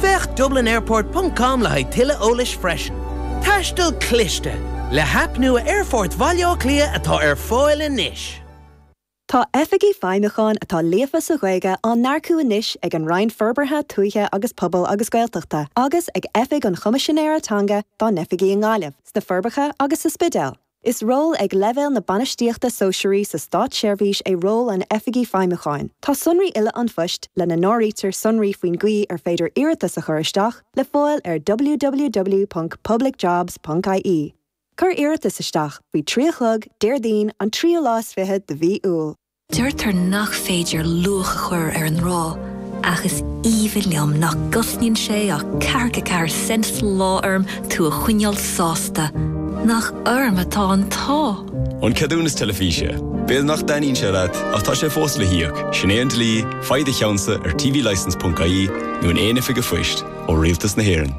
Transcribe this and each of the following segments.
Féach dublinairport ponc com le haghaidh tuilleadh eolais freisin. Taisteal cliste, le haip nua Aerfort Bhaile Átha Cliath atá ar fáil anois. Tá Oifigigh Feidhmiúcháin atá líofa sa Ghaeilge á n-earcú anois ag an Roinn Forbartha Tuaithe agus Pobail agus Gaeltachta agus ag Oifig an Choimisinéara Teanga dá n-oifigí i nGaillimh, sna Forbacha agus sa Spidéal. Is ról ag leibhéal na bainistíochta sóisearaí sa státseirbhís é ról an Oifigigh Feidhmiúcháin. Tá sonraí uile an phoist, lena n-áirítear sonraí faoin gcaoi ar féidir iarratas a chur isteach, le fáil ar www.publicjobs.ie. Cuir iarratas isteach faoi trí a chlog Déardaoin an tríú lá is fiche de mhí Iúil. Deirtear nach féidir luach a chur ar an ngrá, ach is aoibhinn liom nach gcosnaíonn sé ach ceathracha ceathair cent sa lá orm tú a choinneáil sásta. Nach orm atá an t-ádh! An ceadúnas teilifíse. B'fhéidir nach dtaitníonn sé leat, ach tá sé fós le híoc, sin é an dlí, faigh do cheannsa ar tvlicence.ie nó in aon oifig an phoist ó Rialtas na hÉireann.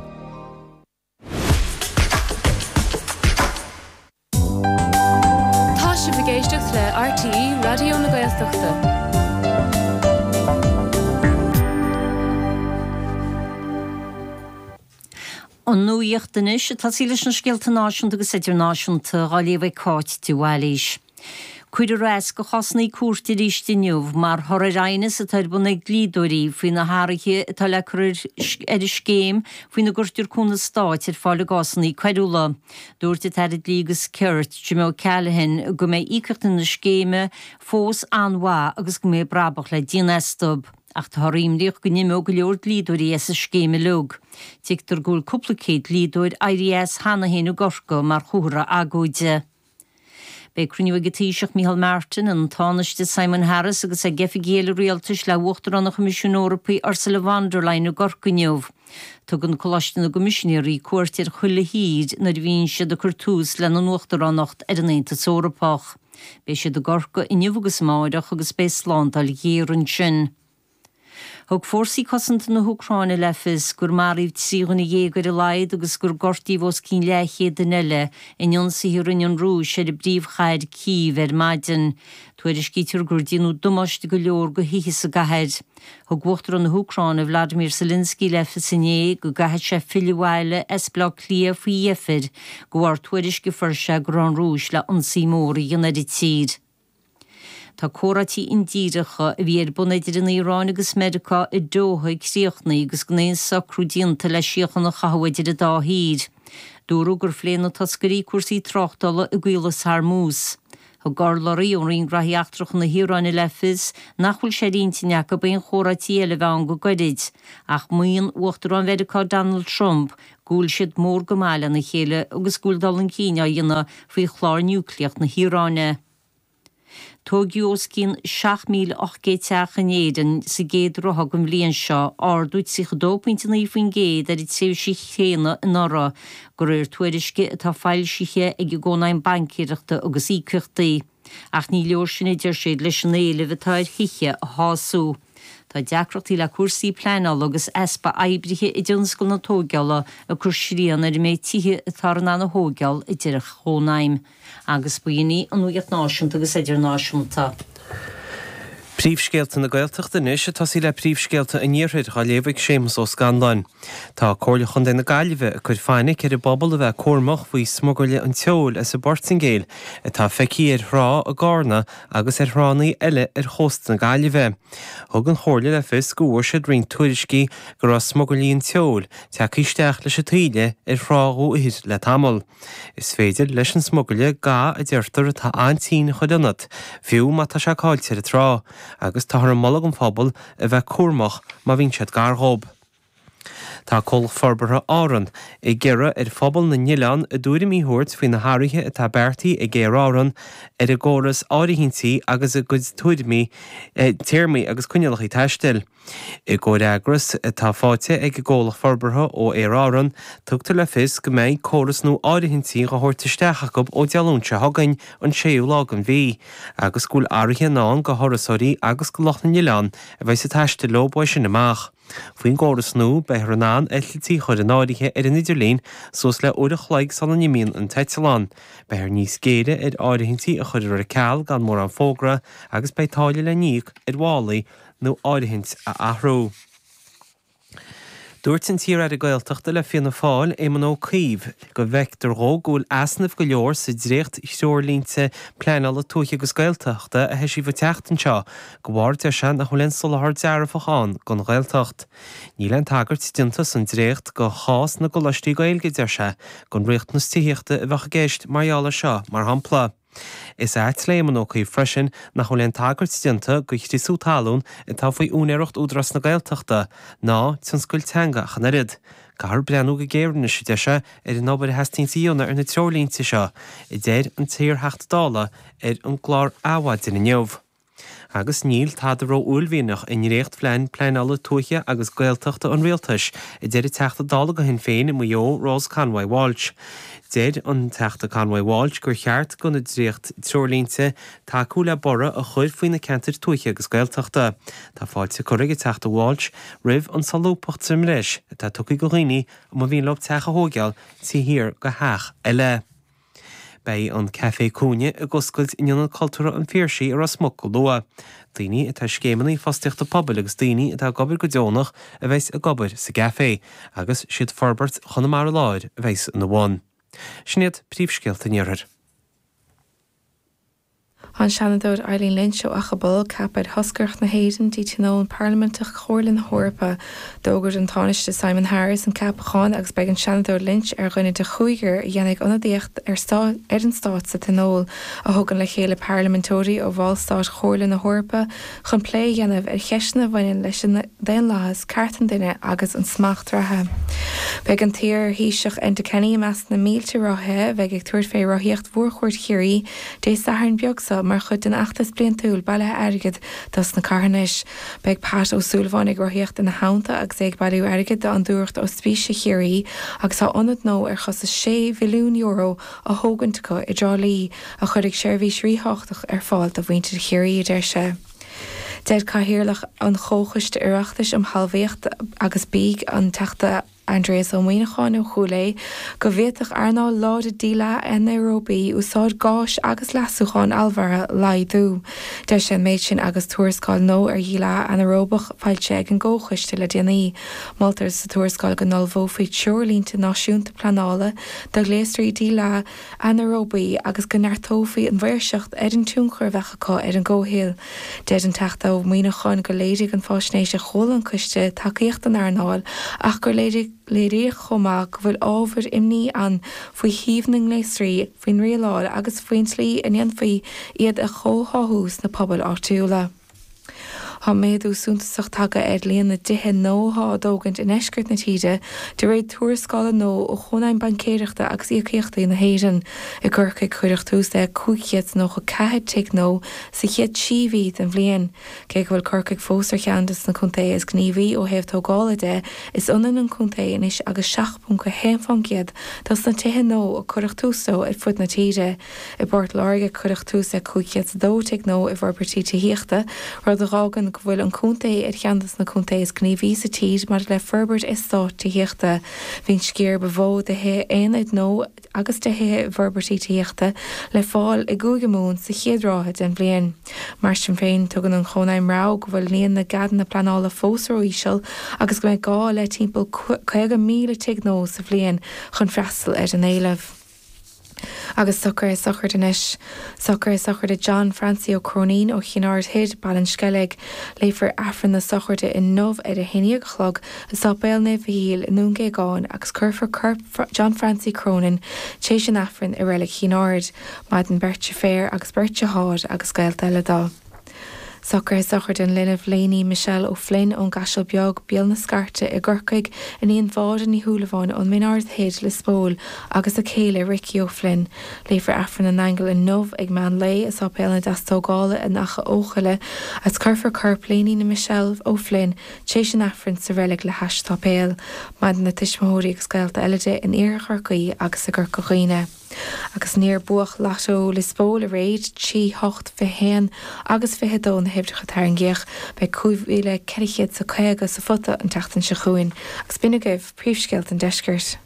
Tá sibh ag éisteacht le RTÉ Raidió na Gaeltachta. An nuaíocht anois, ag tosaí leis na scéalta náisiúnta agus idirnáisiúnta á léamh ag Cáit de Bhailís. Cuirfear as do chásannaí cúirte arís inniu mar thoradh ar aighneas atá ar bun ag dlíodóirí faoi na hathraithe atá le cur ar an scéim faoina gcuirtear cúnamh stáit ar fáil i gcásanna coiriúla. Dúirt an tAire Dlí agus Cirt, Jim O'Callaghan, go mbeidh íocaíochtaí na scéime fós an-mhaith agus go mbeidh brabach le déanamh astu. Ach táthar imníoch go n-imeoidh go leor dlíodóirí as an scéim uilig. Tuigtear go bhfuil cúpla céad dlíodóir éirithe as cheana féin i gCorcaigh mar chomhartha agóide. Beidh cruinniú ag an Taoiseach Micheál Martin, an Tánaiste Simon Harris agus ag oifigigh eile rialtais le hUachtarán an Choimisiúin Eorpaigh Ursula von der Leyen i gCorcaigh inniu. Tugann Coláiste na gCoimisinéaraí cuairt ar chuile thír nuair a bhíonn siad ag cur tús lena nUachtaránacht ar an Aontas Eorpach. Beidh siad i gCorcaigh inniu agus amárach agus beidh slándáil ghéar ansin. Thug Fórsaí Cosanta na hÚcráine le fios gur maraíodh trí dhuine dhéag ar a laghad agus gur gortaíodh os cionn leathchéad duine eile in ionsaithe a rinne an Rúis ar an bpríomhchathair Cív ar maidin. Tuairiscítear gur déanadh damáiste go leor do thithe sa gcathair. Thug Uachtarán na hÚcráine Vladimir Zelensky le fios inné go gcaithfidh sé filleadh abhaile as Baile Átha Cliath faoi dheifir de bharr tuairisc a fuair sé go raibh an Rúis le ionsaí mór a dhéanamh ar an tír. Tá comhráití indíreacha a bhí ar bun idir an Iaráin agus Meiriceá i nDoha críochnaithe agus gan aon socrú déanta le síocháin a chothú idir an dá thír. Dúradh gur phléigh na toscairí cúrsaí tráchtála i gCaolas Hormuz. Thug urlabhraí ón Roinn Gnóthaí Eachtracha na hIaráine le fios nach bhfuil sé ar intinn acu aon chomhráití eile a bheith ann go gairid ach maíonn Uachtarán Mheiriceá Donald Trump go bhfuil siad mór go maith lena chéile agus go bhfuil dul chun cinn á dhéanamh faoi chlár niúcleach na hIaráine. Tóigeadh os cionn 7,800 teach in Éireann sa gcéad ráithe den bhliain seo, ardú 32 pointe 9 faoin gcéad ar an tréimhse chéanna anuraidh, go réir tuairisce atá foilsithe ag an gCónaidhm Baincéireachta agus Íocaíochtaí. Ach ní leor sin a deir siad leis an éileamh atá ar thithe a shású. Tá deacrachtaí le cúrsaí pleanála agus easpa oibrithe i dtionscal na tóigeála ag cur srian ar an méid tithe atáthar in ann a thóigeáil a deir an Chónaidhm. Agus ba shin í an nuaíocht náisiúnta agus idirnáisiúnta. Príomhscéalta na Gaeltachta anois ag tosaí le príomhscéalta an iarthair dhá léamh ag Séamus Ó Scanláin. Tá Comhairle Chontae na Gaillimhe ag cur fainic ar an bpobal a bheith cúramach faoi smugairle an tseoil as an bPortaingéil atá feicthe ar thrá i gCarna agus ar thránnaí eile ar chósta na Gaillimhe. Thug an Chomhairle le fios go bhfuair siad roinnt tuairiscí go raibh smugairlí an tseoil tagtha isteach leis an taoille ar thrá Dhumhaigh Thoir le tamall. Is féidir leis an smugairle ga a deirtear atá an-tinn a chur ionat, fiú má tá sé caillte ar an trá, agus táthar ag moladh don phobal a bheith cúramach má bhíonn siad gar dhób. Tá Comhlacht Forbartha Árann ag iarraidh ar phobal na n-oileán a dtuairimí a thabhairt faoi na hathruithe atá beartaithe ag Aer Árann ar a gcóras áirithintí agus a gcuid tuairmí, téarmaí agus coinníollacha taistil. I gcomhfhreagras atá faighte ag an gComhlacht Forbartha ó Aer Árann, tugtar le fios go mbeidh córas nua áirithintí dhá thabhairt isteach acu ó Dé Luain seo chugainn, an 6ú lá den mhí, agus go bhfuil athruithe i ndán go thurasóirí agus go lucht na n-oileán a bheidh ag taistil leo uaidh sin amach. Faoin gcóras nua, beifear in ann eitiltí a chur in áirithe ar an idirlíon suas le uair a chloig sula n-imíonn an t-eitealán, beifear níos géire ar áirithintí a chuirear ar ceal gan mórán fógra agus beidh táille le n-íoc ar mhálaí nó áirithint a athrú. Dúirt an t-iar-aire Gaeltachta le Fianna Fáil, Éamon Ó Cuív, go bhfeictear dhó go bhfuil easnaimh go leor sa dréacht-threoirlínte pleanála tuaithe agus Gaeltachta a eisíodh an tseachtain seo de bharr, deir sé, nach bhfuil aon soláthar dearfach ann don Ghaeltacht. Níl aon tagairt déanta san dréacht go chás na gColáistí Gaeilge, deir sé, gur riachtanas tithíochta a bheadh i gceist mar gheall ar seo, mar shampla. Is ait leis an Ó Cuív freisin nach bhfuil aon tagairt déanta do chriosú talún atá faoi úinéireacht Údarás na Gaeltachta, ná tionscail teanga ach an oiread. Caithfear breathnú go géar anois, a deir sé, ar an obair a theastaíonns a dhéanamh ar na treoirlínte seo, a deir an t-iar-Theachta Dála ar an gclár Adhmhaidin inniu. Agus níl tada ró-uaillmhianach i ndréachtphlean pleanála tuaithe agus Gaeltachta an Rialtais, a deir an Teachta Dála do Shinn Féin i Maigh Eo, Rose Conway-Walsh. Deir an Teachta Conway-Walsh gur cheart do na dréacht-treoirlínte tacú le borradh a chur faoi na ceantair tuaithe agus Gaeltachta. Tá fáilte curtha ag an Teachta Walsh roimh an solúbthacht sa mbreis atá tugtha do dhaoine a mba mhian leo teach a thóigeáil taobh thiar de theach eile. Beidh an Café Cúinne ag oscailt in Ionad Cultúrtha an Phiarsaigh i Ros Muc go luath. Daoine atá i Scéimeanna Fostaíochta Pobail agus daoine atá ag obair go deonach a bheas ag obair sa gcafé agus is iad Forbairt Chonamara Láir a bheas ina bhun. Sin iad príomhscéalta an iarthair. An Seanadóir Eileen Lynch ó Achadh Bolg ceaptha ar thoscaireacht na hÉireann go dtí Tionól Parlaiminteach Chomhairle na hEorpa. D'fhógair an Tánaiste Simon Harris an ceapachán agus beidh an Seanadóir Lynch ar dhuine de chúigear a dhéanfaidh ionadaíocht ar an Stát sa Tionól, a thugann le chéile parlaiminteoirí ó bhallstáit Chomhairle na hEorpa chun plé a dhéanamh ar cheisteanna a bhaineann leis an Daonlathas, Cearta an Duine agus an Smacht Reachta. Beidh an t-iar Thaoiseach Enda Kenny i measc na mílte rothaithe a bheidh ag tabhairt fé Rothaíocht Mhórchuaird Chiarraí Dé Sathairn beag seo mar chuid den fheachtas bliantúil bailithe airgid dos na carthanais. Beidh Pat Ó Súilleabháin ag rothaíocht ina theannta agus é ag bailiú airgid d'Fhondúireacht Ospíse Chiarraí agus tá ionad nua ar chostas €6 mhilliún á thógaint acu i dTrá Lí a chuirfidh seirbhís rítháchtach ar fáil do mhuintir Chiarraí a deir sé. Deir Cathaoirleach an Chomhchoiste Oireachtais um Thalmhaíocht agus Bia an Teachta Aindrias Ó Muíneacháin ó Chúil Aodha go bhféadfadh earnáil láidir díleá anaeróbaigh úsáid gáis agus leasacháin allmhairithe a laghdú. Deir sé an méid sin agus tuarascáil nó ar dhíleá anaeróbach seolta ag an gComhchoiste le déanaí. Moltar sa tuarascáil go n-ullmhófaí treoirlínte náisiúnta pleanála do ghléasraí díleá anaeróbaigh agus go neartófaí an mhaoirseacht ar an tionchar a bheadh acu ar an gcomhshaol. Deir an Teachta Ó Muíneacháin gur léirigh an fhaisnéis a chuala an coiste tacaíocht don earnáil ach gur léiríodh chomh maith go bhfuil ábhair imní ann faoi shuíomh na ngléasraí, faoin rialáil agus faoin tslí a ndéanfaí iad a chomhtháthú sna pobail áitiúla. Tá méadú suntasach tagtha ar líon na dtithe nua atá á dtógaint i ndeisceart na tíre, de réir tuarascála nua ó Chónaidhm Baincéireachta agus Íocaíochtaí na hÉireann. I gCorcaigh cuireadh tús le 594 tigh nua sa chéad trí mhí den bhliain. Cé go bhfuil Corcaigh fós ar cheann des na contaetha is gníomhaí ó thaobh tógála de, is ionann an contae anois agus 7.1% dos na tithe nua a cuireadh tús leo ar fud na tíre. I bPort Láirge cuireadh tús le 502 tigh nua i bhforbairtí tithíochta, rud a dh'fhágann go bhfuil an contae ar cheann de na contaetha is gníomhaí sa tír maidir le forbairt eastát tithíochta. Bhí an sciar ba mhó de thithe aonair nua agus de thithe i bhforbairtí tithíochta le fáil i gCúige Mumhan sa chéad ráithe den bhliain. Mar sin féin, tugann an Chónaidhm rabhadh go bhfuil líon na gceadanna pleanála fós ró-íseal agus go mbeidh gá le timpeall 50,000 tigh nua sa bhliain chun freastal ar an éileamh. Agus socruithe sochraide anois. Socruithe sochraide John Francie Ó Cróinín ó Chinn Aird Thoir, Baile an Sceilg. Léifear Aifreann na sochraide inniu ar a haon dhéag a chlog i Sáipéal Naomh Mhichíl i nDún Géagáin agus cuirfear corp John Francie Cronin tréis an Aifrinn i reilig Chinn Aird. Maireann beirt deirféar agus beirt dearthár agus gaolta eile dó. Socruithe sochraide an linbh, Lainey Michelle O'Flynn ón gCaiseal Beag, Béal na Scairte, i gCorcaigh, iníon Mháire Ní Shúilleabháin ón Min Aird Thoir, Lios Póil, agus a céile Ricky O'Flynn. Léifear Aifreann na nAingeal inniu ag meán lae i Sáipéal na Deastógála in Achadh Eochaille agus cuirfear corp Lainey na Michelle O'Flynn tar éis an Aifrinn sa reilig le hais an tsáipéil. Maireann a tuismitheoirí agus gaolta eile di in iarthar Chorcaí agus i gCorca Dhuibhne. Agus níor buadh Lotto Lios Póil aréir, trí, hocht, fiche haon agus fiche a dó na huimhreacha a tarraingíodh, beidh cúig mhíle ceithre chéad is a caoga sa phota an tseachtain seo chugainn agus b'in agaibh príomhscéalta an deiscirt.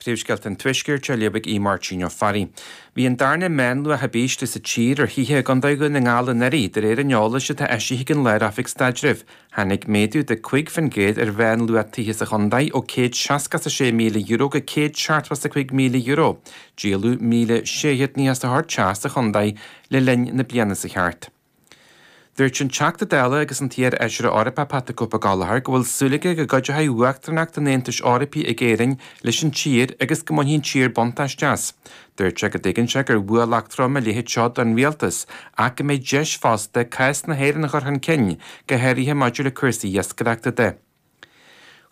Príomhscéalta an tuaiscirt a léifidh Aodh Máirtín Ó Fearraigh. Bhí an darna meánluach ab ísle sa tír ar thithe i gCondae Dhún na nGall anuraidh, de réir an eolais atá eisithe ag an Lár-Oifig Staidrimh. Tháinig méadú de 5% ar mheánluach tithe sa chontae ó €166,000 go €175,000, díoladh 1,694 teach sa chontae le linn na bliana seo chuaigh thart. Dúirt an Teachta Dála agus an t-iarfheisire Eorpach Pat the Cope Gallagher go bhfuil súil aige go gcuideoidh uachtaránacht an Aontais Eorpaigh ag Éirinn leis an tír agus go mbainfidh an tír buntáiste as. Dúirt sé go dtuigeann sé gurb ualach trom a leithéid seo don Rialtas ach go mbeidh deis fosta cás na hÉireann a chur chun cinn, go háirithe maidir le cúrsaí iascaireachta de.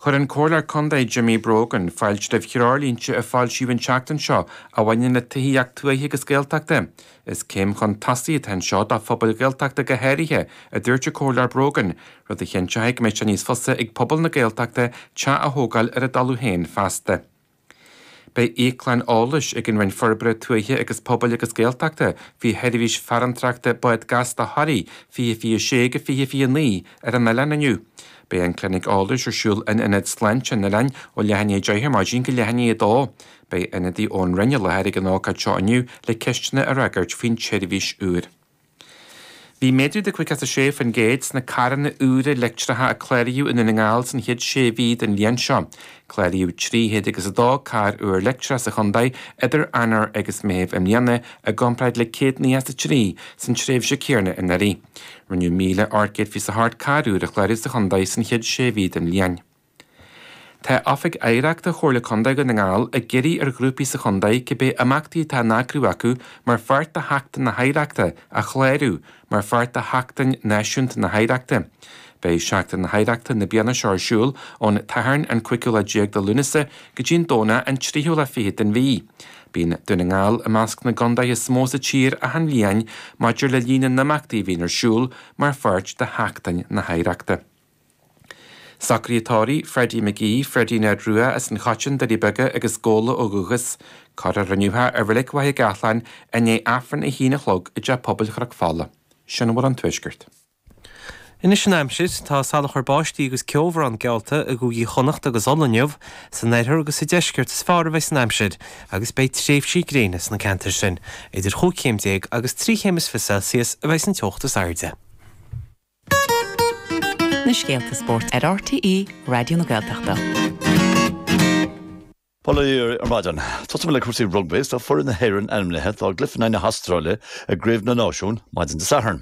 Chuir an Comhairleoir Contae Jimmy Brogan fáilte roimh threoirlínte a foilsíodh an tseachtain seo a bhaineann le tithíocht tuaithe agus Gaeltachta. Is céim chun tosaigh atá anseo do phobail Ghaeltachta go háirithe, a dúirt an Comhairleoir Brogan, rud a chinnteoidh go mbeidh sé níos fusa ag pobal na Gaeltachta teach a thógáil ar a dtalamh féin feasta. Beidh íoclann eolais ag an Roinn Forbartha Tuaithe agus Pobail agus Gaeltachta faoi sheirbhís farantóireachta bád gasta Thoraí 2026-2029 ar an oileán inniu. Beidh an clinic eolais ar siúl in Ionad Sláinte an Oileáin ó leath i ndiaidh 10 ar maidin go leath i ndiaidh 2. Beidh ionadaí ón Roinn i láthair ag an ócáid seo inniu le ceisteanna a fhreagairt faoin tseirbhís úr. Bhí méadú de 56% sna carranna úra leictreacha a cláraíodh i nDún na nGall san chéad sé mhí den bhliain seo. Cláraíodh trí chéad agus a dó carr úr leictreach sa chontae idir Eanáir agus Meitheamh i mbliana i gcomparáid le céad nócha is a trí san tréimhse céanna anuraidh. Rinneadh míle ocht gcéad fiche is a hocht carr úr a chlárú sa chontae san chéad sé mhí den bhliain. Tá Oifig Oidhreachta Chomhairle Contae Dhún na nGall ag iarraidh ar ghrúpaí sa chontae cibé imeachtaí atá á n-eagrú acu mar pháirt de Sheachtain na hOidhreachta a chlárú mar pháirt de Sheachtain Náisiúnta na hOidhreachta. Beidh Seachtain na hOidhreachta na bliana seo ar siúl ón tSathairn an cúigiú lá déag de Lúnasa go dtí an Domhnach an tríú lá fichead den mhí. Bíonn Dún na nGall i measc na gcontaetha is mó sa tír achan bhliain maidir le líon na n-imeachtaí a bhíonn ar siúl mar pháirt de Sheachtain na hOidhreachta. Socruithe tórraimh, Freddie McGee, Freddie Ned Rua as an Choiteann, Doirí Beaga agus Gabhla ó dhúchas. Cuirfear inniu é i Reilig Mhachaire Gathlán i ndiaidh Aifreann a haon a chlog i dTeach Pobail Chnoc Fola. Sin Nuacht an Tuaiscirt. Anois an aimsir, tá salachar báistí agus ceobhrán geallta i gCúigí Chonnacht agus Uladh inniu. San oirthear agus sa deisceart is fearr a bheidh an aimsir agus beidh tréimhsí gréine sna ceantair sin. Idir chúig chéim déag agus trí chéim is fiche Celsius a bheas an teocht is airde. na scéalta spóirt ar RTÉ Raidió na Gaeltachta. Bail ó Dhia oraibh ar maidin. Tosóidh muid le cúrsaí rugbaí is tá foireann na hÉireann ainmnithe dá gcluiche in aghaidh na hAstráile i gCraobh na Náisiún maidin Dé Sathairn.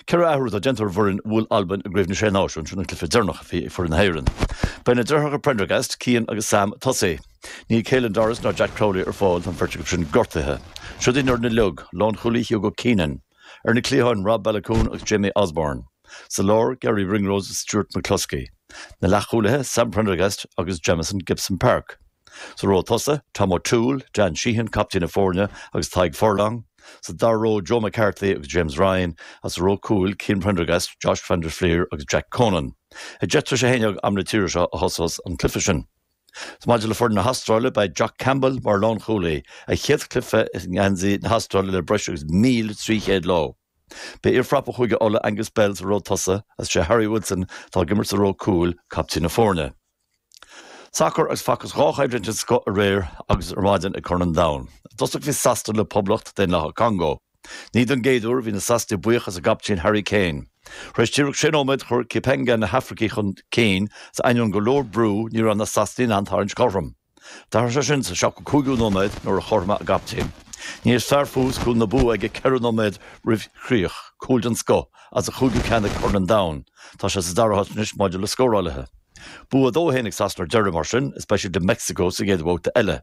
Ceithre athrú atá déanta ar an bhfoireann a bhuail Albain i gCraobh na Sé Náisiún sin an cluiche deireanach a bhí ag foireann na hÉireann. Beidh na deartháireacha Prendergast, Cian agus Sam, ag tosaí. Níl Caelan Doris ná Jack Crowley ar fáil, tá an bheirt acu sin gortaithe. Siod í an fhoireann uilig, lánchúlaí Hugo Keenan, Ar na cliatháin, Rob Baloucoune agus Jamie Osborne. Sa lár, Garry Ringrose is Stuart McCloskey. Na leathchúlaithe, Sam Prendergast agus Jamison Gibson-Park. Sa ró tosaigh, Tom O'Toole, Dan Sheehan, captaen na foirne, agus Tadhg Furlong. Sa dara ró, Joe McCarthy agus James Ryan, agus sa ró cúil, Cian Prendergast, Josh van der Flier agus Jack Conan. Ag deich tar éis a haon déag am na tíre seo a thosós an cluiche sin. Maidir le foireann na hAstráile, beidh Jock Campbell mar lánchúlaí, a chéad chluiche i ngeansaí na hAstráile le breis agus míle trí chéad lá. Beidh iarfhrapa Chúige Uladh, Angus Bell, sa ró tosaigh agus is é Harry Wilson, atá ag imirt sa ró cúil, captaen na foirne. Sacar agus facthas dhá choimhlint den scoth aréir agus ar maidin ag Corn an Domhain. I dtosach bhí Sasana le Poblacht Daonlathach Congó. Ní don gcéaduair bhí na Sasanaigh buíoch as a gcaptaen Harry Kane. Tar éis díreach sé nóiméad chuir Cipenga na hAfracaigh chun cinn is ainneoin go leor brú ní raibh na Sasanaigh in ann tarraingt cothrom. D'athraigh sé sin sa 75ú nóiméad nuair a chothromaigh a gcaptaen, níos fearr fós cúl na bua aige ceithre nóiméad roimh chríoch, cúl den scoth is a chúigiú ceann ag Corn an Domhain. Tá sé sa dara háit anois maidir le scórálaithe. Bua 2-1 ag Sasana ar deireadh mar sin is beidh siad le Meicsiceo sa gcéad bhabhta eile.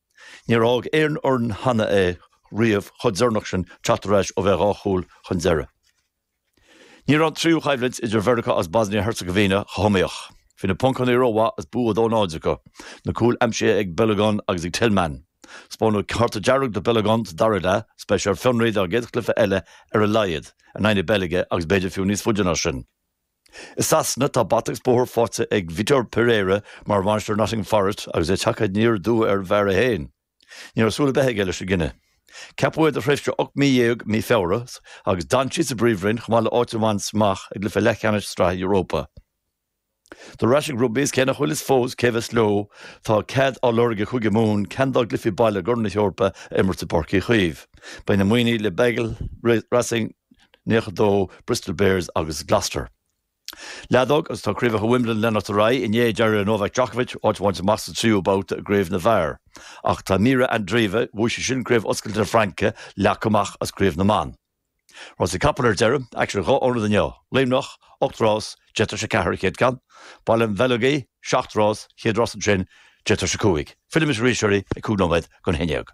Níor fhág aon fhoireann cheana é riamh chomh deireanach sin teacht ar ais ó bheith dhá chúl chun deireadh. Ní raibh an tríú choimhlint idir Mheiriceá agus Bosnia-Herzegovina chomh hiomaíoch. Bhí na Poncánaigh rómhaith is bua 2 0 acu, na cúil aimsithe ag Balogun agus ag Tillman. Spáineadh cárta dearg do Balogun sa dara leath, is beidh sé ar fionraí dá gcéad chluiche eile ar a laghad, in aghaidh na Beilge agus b'fhéidir fiú níos faide ná sin. I Sasana tá bata agus bóthar faighte ag Vitor Pereira mar bhainisteoir Nottingham Forest agus é tagtha aniar aduaidh ar an bhfear é féin. Ní raibh súil ar bith aige leis an gcinneadh. Ceapadh é do thréimhse ocht mí dhéag mí Feabhra agus d'fhan sé sa bPríomhroinn chomh maith le áit a bhaint amach ag cluiche leathcheannais Sraithe Europa. Cúrsaí rugbaí is cé nach bhfuil a fhios fós cé a bheas leo tá cead á lorg ag Cúige Mumhan ceann dá gcluichí baile i gCorn na hEorpa a imirt i bPáirc Uí Chaoimh. Beidh na Muimhnigh le Bordeaux, Racing, 92 Bristol Bears agus Gloucester. Leadóg agus tá craobhacha Wimbledon ag leanacht ar aghaidh. Inné d'éirigh le Novak Djokovic áit a bhaint amach sa tríú babhta i gcraobh na bhfear. Ach tá Mirra Andreeva, bhuaigh sí sin Craobh Oscailte na Fraince, leagtha amach as craobh na mban. Rásaí capall ar deireadh, aicsean ar dhá ionad inniu. Luimneach, 8 rás, deich tar éis a ceathair an chéad ceann. Baile an Bheileogaigh, 7 rás, chéad rás ansin, deich tar éis a cúig. Fillfidh mise arís oraibh ag cúig nóiméad chun a haon déag.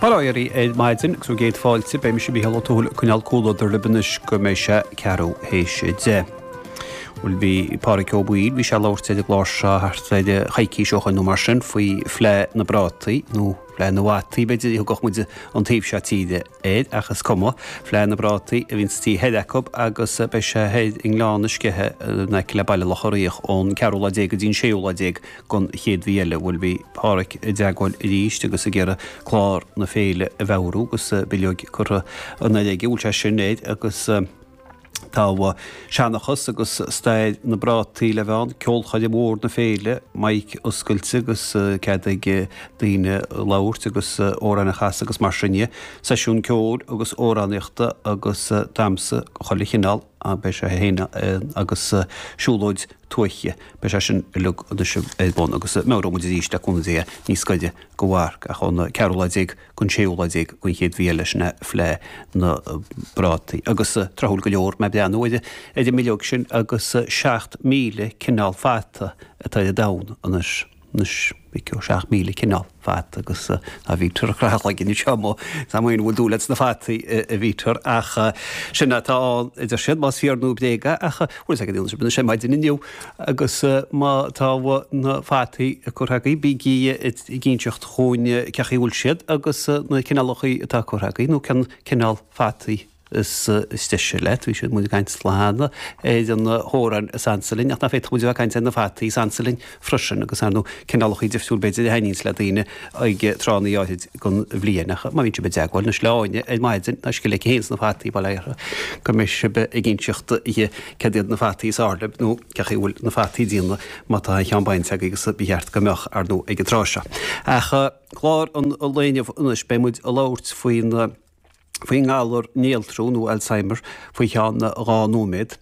Bail ó Dhia oraibh ar maidin agus bhur gcéad fáilte. Beidh mise Mícheál Ó Tuathail ag coinneáil comhluadar libh anois go mbeidh sé ceathrú théis a deich. Bhuel bhí Páraic Ó Baoill, bhí sé ag labhairt ar an gclár seo thart ar eh, coicís ó shoin nó mar sin faoi Fhleá na bPrátaí nó Fleá na bhFataí, b'fhéidir a thugadh muid an taobh seo tíre air ach is cuma, Fleá na bPrátaí a bhíonn sa taobh thoir acu agus eh, beidh sé thoir i nGleann na Sceiche eh, in aice le Baile Locha Riach ón ceathrú lá déag go dtí an séú lá déag don chéad mhí eile. Bhuel, bhí Páraic i dteagmháil arís agus ag iarraidh clár na féile a mheabhrú agus bileoig curtha anoir aige. Bhuel, sé sin é agus tá seanchas agus stair na bprátaí le bheith ann, ceolchoirm mhór na féile, maic oscailte agus cead ag daoine labhairt agus amhráin a chasadh agus mar sin dhe. Seisiún ceoil agus amhránaíochta agus damsa de chuile chineál. Beidh sé fhéin agus siúlóid tuaithe, beidh sé sin uilig anois ar bun agus meabhróidh muid arís le cúnamh Dé níos gaire don mharc ach ón ceathrú lá déag gon séú lá déag den chéad mhí eile sin é Fleá na bPrátaí agus tráthúil go leor mé ag breathnú ar an mbileog sin agus seacht míle cineál fata atá ar domhan anois. Anois bhí ceo 7,000 cineál fata agus ná bhítear ag craitheadh a chloigeann anseo mo. Ná maoin a bhfuil dúil agat sna fataí a bhítear ach sin atá ann a deir siad, más fíor nó bréag é ach bhfuil fhios ag an fhianaise bíonn sé maidin inniu agus má tá na fataí curtha agaibh bígí ag inseacht dhúinn cén chaoi a bhfuil siad agus na cineálacha atá curtha agaibh nó cén cineál fataí is deise leat. Bhí siad, muid, ag caint cheana ar na hamhráin is ansa linn, ach nach bhféadfadh muid a bheith ag caint ar na fataí is ansa linn freisin, agus, ar ndóigh, cineálachaí difriúil, b'fhéidir, a thaitníonns le daoine ag tráthanna áithrid den bhliain. Ach má bhíonn sibh i dteagmháil le Sláine ar maidin, tá scil aici fhéin sna fataí, bail ó Dhia uirthi, go mbeidh sibh ag inseacht di céard iad na fataí is fearr libh, nó cé chaoi a bhfuil na fataí ag déanamh, má tá aon cheann bainte agaibh, agus ba cheart go mbeadh, ar ndóigh, ag an tráth seo. Ach clár an lae inniu, anois, beidh muid ag labhairt faoi na. faoin ngalar néaltrú nó Alzheimer faoi cheann dhá nóiméad.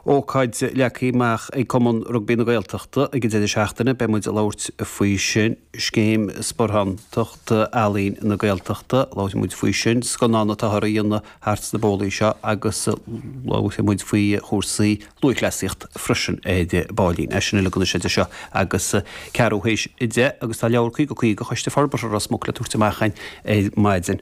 Ócáid leagtha amach ag Cumann Rugbaí na Gaeltachta ag an deireadh seachtaine, beidh muid ag labhairt faoi sin. Scéim Sparántacht Ealaín na Gaeltachta, labhróidh muid faoi sin. Scannán atáthar a dhéanamh thart sna bólaí seo agus labhróidh muid faoi chúrsaí lúthchleasaíocht freisin ar baillín. É sin uilig anois idir seo agus ceathrú théis a deich agus tá leabhar Caoga Caoga Choiste Forbartha Ros Muc le tabhairt amach ar maidin.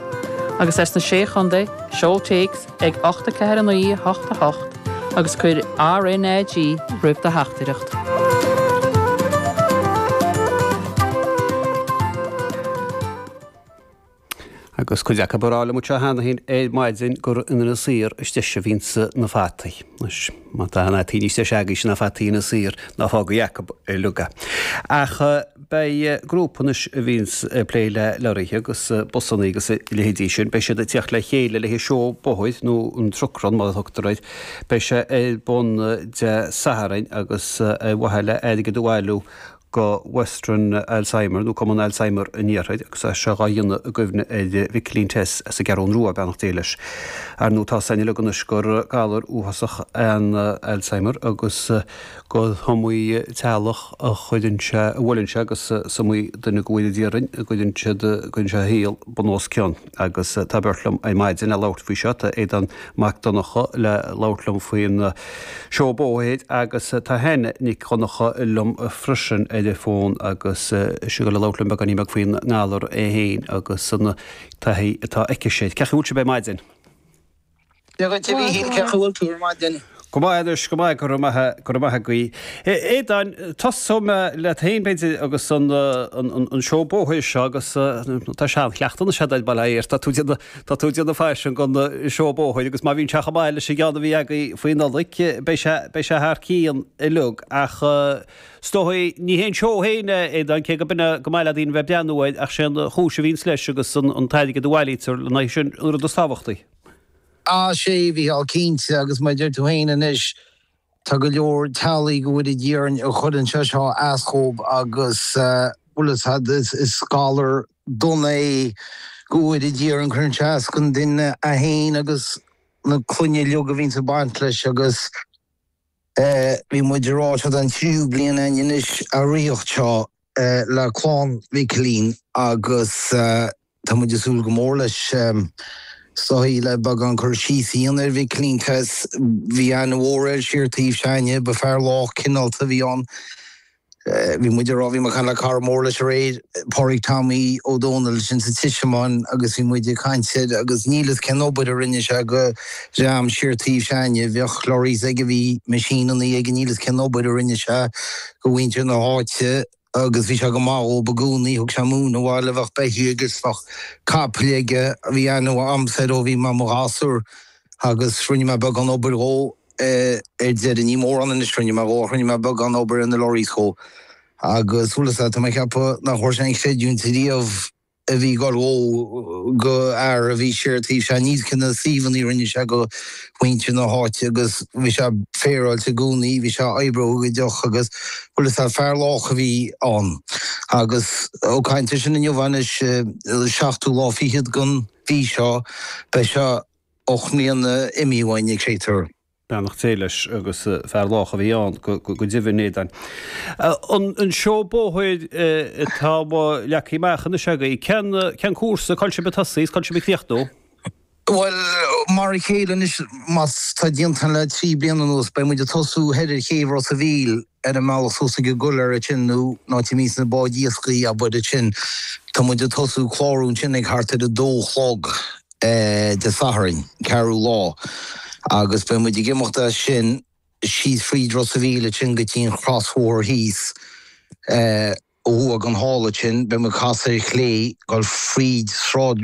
agus as na Sé Chontae, seol téacs ag 849888 agus cuir RNAG roimh do theachtaireacht. Agus cuid acab a rá liom anseo cheana fhéin ar maidin gur in Inis Oírr is deise a bhíonns na fataí. Má tá aon fhataí níos deise agaibhse ná fataí Inis Oírr, ná fágaí acab uilig é. Ach beidh grúpa anois a bhíonns ag plé le lorraithe agus busannaí agus a leithéidí sin, beidh siad ag teacht le chéile le haghaidh seó bóthair nó an truck run mar a thugtar air. Beidh sé ar bun Dé Sathairn agus ar mhaithe le airgead a bhailiú go Western Alzheimer nó Cumann Alzheimer an Iarthair agus é seo dhá dhéanamh i gcuimhne ar Mhicilín Tess as an gCeathrúin Rua, beannacht Dé leis. Ar ndú tá a fhios againn uilig anois gur galar uafásach é an Alzheimer agus go h-iomaí teaghlach a chuireann sé, a bhuaileann sé agus is iomaí duine dhá bhfuil in Éirinn a gcuireann siad, a gcuireann sé a shaol bunoscionn. Agus tá beirt liom ar maidin le labhairt faoi seo, tá Aodán Mac Donnacha le labhairt liom faoin Seó Bóthair agus tá Hannah Nic Dhonnacha liom freisin ar an fón agus í le labhairt liom beagáinín beag faoin ngalar é fhéin agus an taithí atá aici sin. Cé chaoi a bhfuil sibh ar maidin? Dia dhuit a Mhíchíl, cé chaoi a bhfuil tú ar maidin? Go maith anois, go maith, go raibh maith, go raibh maith agaí. Aodáin, tosóidh mé leat fhéin b'fhéidir agus an an seó bóthair seo agus tá seanchleachtadh anois agat, bhuel, air, tá tú déanamh, tá tú déanamh faisean gon seó bóthair agus má bhíonn sé chomh maith leis an gceann a bhí agaí faoi Nollaig, beidh sé, beidh sé thar cionn uilig ach is dóigh, ní hé an seó fhéin é Aodán, cé go mb'fhéidir go maith leat daoine a bheith ag breathnú air ach sé an chúis a bhíonns leis agus an an t-airgead a bhailítear lena aghaidh, sin an rud is tábhachtaí. Ah sea, a Mhichíl, cinnte, agus mar a deir tú féin anois, tá go leor teaghlaigh, go bhfóire Dia orainn, a chuireann sé seo as dhóib agus bhfuil a fhios agat, is galar dona é, go bhfóire Dia orainn, cuireann sé as gon duine é fhéin agus na clainne uilig a bhíonns ag baint leis agus Bhí muid ráite don tríú bliain anois a ríocht seo le clann Mhicilín agus tá muid ag súil go mór leis is dóichí le beagán cur síos a dhéanamh ar Mhicilín Bhí aithne mhór air siar taobh s'againne, ba fear lách cineálta a bhí ann. Bhí muid ag rá, bhí mé ag caint le cara mór leis aréir, Pádraig Tommy Ó Dónaill ansin sa Tismeáin agus bhí muid ag caint air agus níl fhios cén obair a rinne sé go dream siar taobh s'againne, bheadh lorries aige, bhí machine-annaí aige, níl fhios cén obair a rinne sé go mhuintir na háite agus bhí sé go maith dhóib i gcónaí, thug sé móin abhaile, bheadh beithígh agus bheadh capaill aige, bhí aithne agamsa air ó bhí mé i mo ghasúr. agus rinne mé beagán obair dhó ar deireadh. Ní mórán anois a rinne mé dhó ach rinne mé beagán obair ar na lorries dhó agus bhfuil a fhios agat, tá mé ag ceapadh nach bhfuair sé an chreidiúint riamh a bhí ag goil dhó go fhear a bhí siar taobh seo. Níl fhios cé na suíomhanna a rinne sé go muintir na háite agus bhí sé féaráilte i gcónaí, bhí sé oibleagáideach agus bhfuil a fhios agat, fear lách a bhí ann. Agus ó caint ar sin inniu anois, seachtú lá fichead den. mhí seo. Beidh sé ocht mbliana imithe uainn ag séitar. Beannacht Dé leis agus fear lách a bhí ann go deimhin Aodán. An seó bóthair atá leagthaí amach anois agaí, cén cúrsa, cá bhfuil sibh ag tosaí is cá bhfuil sibh ag críochnú? Bhuel, mar a chéile anois, mar atá déanta againn le trí bliana anuas, beidh muid ag tosú thoir ar chéibh Ros a' Mhíl Ar an mbealach suas ag an gcoiléar ansin nó an áit a mbíonns na báid iascaigh ab fhuide sin. Tá muid ag tosú clárú ansin ag thart ar a dó a chlog Dé Sathairn, 4ú lá, agus beidh muid ag imeacht as sin síos fríd Ros a' Mhíl ansin go dtí'n chrosbhóthar thíos uaidh an halla ansin beidh muid ag casadh ar chlé ag goil fríd Sráid